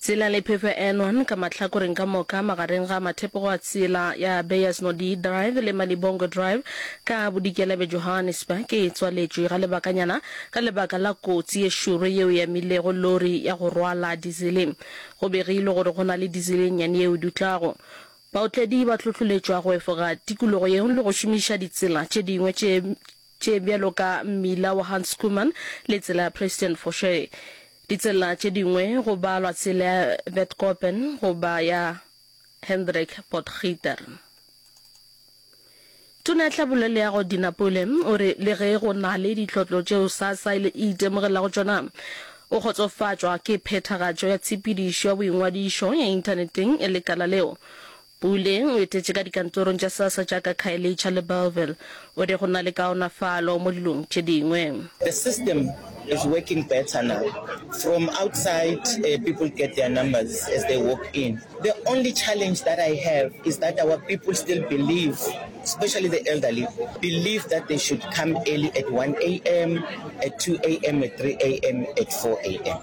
Tsela le phefo Enwan ka mahlakoreng ka moka magareng ga mathepogo a tsela ya Beyers Nodie Drive le Malibongwe Drive ka bodikela bja Johannesburg e tswaletšwe ga lebakanyana ka lebaka la kotsi ye šoro yeo e amilego lori ya go rwala dizele. Go begilwe gore go na le dizele e nnyane yeo e dutlago. Baotledi ba hlohloletšwa go efoga tikologo yeo le go šomiša ditsela tše dingwe tše tše bjalo ka mmila wa Hans Schoeman le tsela ya President Foše. Ditsela tše dingwe go balwa tsela ya Witkoppen goba ya Hendrik Potgieter. Tona ya Tlhabollo Leago Dina Pule o re le ge go na le ditlhotlo tšeo SASSA e itemogelago tšona, o kgotsofatšwa ke phethagatšo ya tshepedišo ya boingwadišo ya inthaneteng ya lekala leo. Pule o etetše ka dikantorong tša Sassa tša ka Khayelitsha le Bellville. O re go na le kaonafalo mo dilong tše dingwe. The system is working better now, from outside people get their numbers as they walk in, the only challenge that I have is that our people still believe, especially the elderly, believe that they should come early at one am, at two am, at three am, at four am.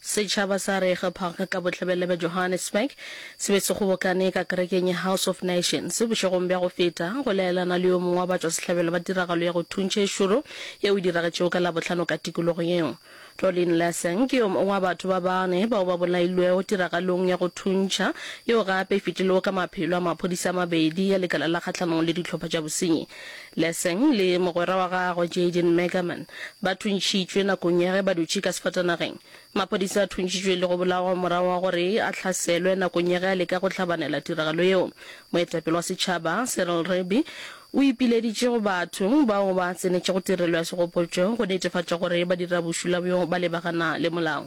Setšhaba sa Rege Park ka Bohlabela bja Johannesburg se be se kgobokane ka kerekeng ya House of Nations bošegong bja go feta go laelana le yo mongwe wa batšwasehlabelo ba tiragalo ya go thuntšha e šoro yeo e diragetšego ka Labohlano ka tikologo yeo. Rolene Lassan ke yo mongwe wa batho ba bane bao ba bolailwego tiragalong ya go thuntšha yeo gape e fetilego ka maphelo a maphodisa a mabedi ya Lekala la Kgahlanong le Dihlopha tša Bosenyi Lessing le mogwera wa gagwe Jaden Megerman ba thuntšitšwe nakong ya ge ba dutše ka sefatanageng. Maphodisa a thuntšitšwe le go bolawa morago ga gore a hlaselwe nakong ya ge a leka go hlabanela tiragalo yeo. Moetapele wa setšhaba Cyril Rebbe o ipileditše go batho bao ba tsenetšego tirelo ya segopotšo go netefatša gore ba dira bošula bjo ba lebagana le molao.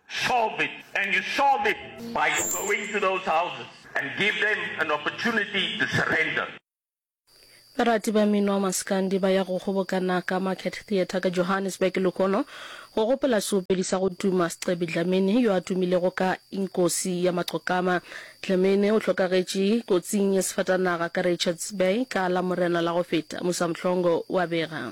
Solve it and you solve it by going to those houses and give them an opportunity to surrender. Barati ba mmino wa maskandi ba ya go kgobokana ka Market Theatre ka Johannesburg lehono go gopola seopedi sa go tuma Scebi Dlamini yo a tumilego ka Inkosi ya Maqokama. Dlamini o hlokagetše kotsing ya sefatanaga ka Richards Bay ka Lamorena la go feta, Musa Mhlongo wa bega.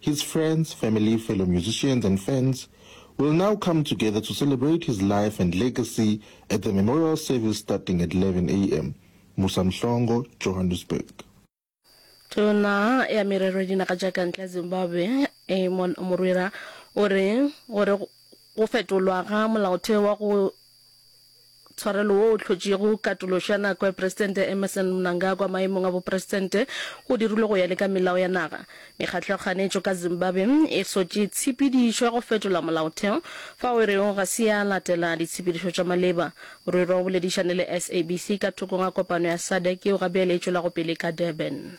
His friends, family, fellow musicians and fans will now come together to celebrate his life and legacy at the memorial service starting at 11 am, Musa Mhlongo, Johannesburg. Tona ya Merero ya Dinaga tša ka Ntle ya Zimbabwe, Amon Murwira, o re gore go fetolwa ga molaotheo wa go Tshwarelo wo o hlotšego katološo ya nako ya Presidente Emmerson Mnangagwa maemong a bopresidente o dirilwe go ya le ka melao ya naga. Mekgatlo ya kganetšo ka Zimbabwe e sotše tshepedišo ya go fetola molaotheo fao e rego ga se ya latela ditshepedišo tša maleba. Rwirwa o boledišane le SABC ka thokong ga kopano ya SADC yeo gabjale e tšwelago pele ka Durban.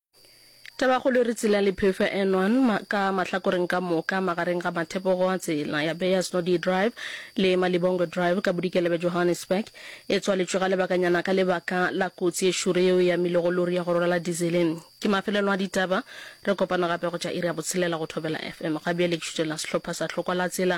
Tabakgolo re tsela le phefo e nwan ma, ka mahlakoreng ka moka magareng ga mathepogo a tsela ya Beyers Nodie Drive le Malibongwe Drive ka bodikela bja Johannesburg. E tswaletšwe ga lebakanyana ka lebaka la kotsi e šoro yeo e amilego lori ya go rwala dizele. Ke mafelelo a ditaba. Re kopana gape go tša iri ya botshelela go Thobela FM. Ga bjale ke šutšela sehlopha sa Hlokwa la Tsela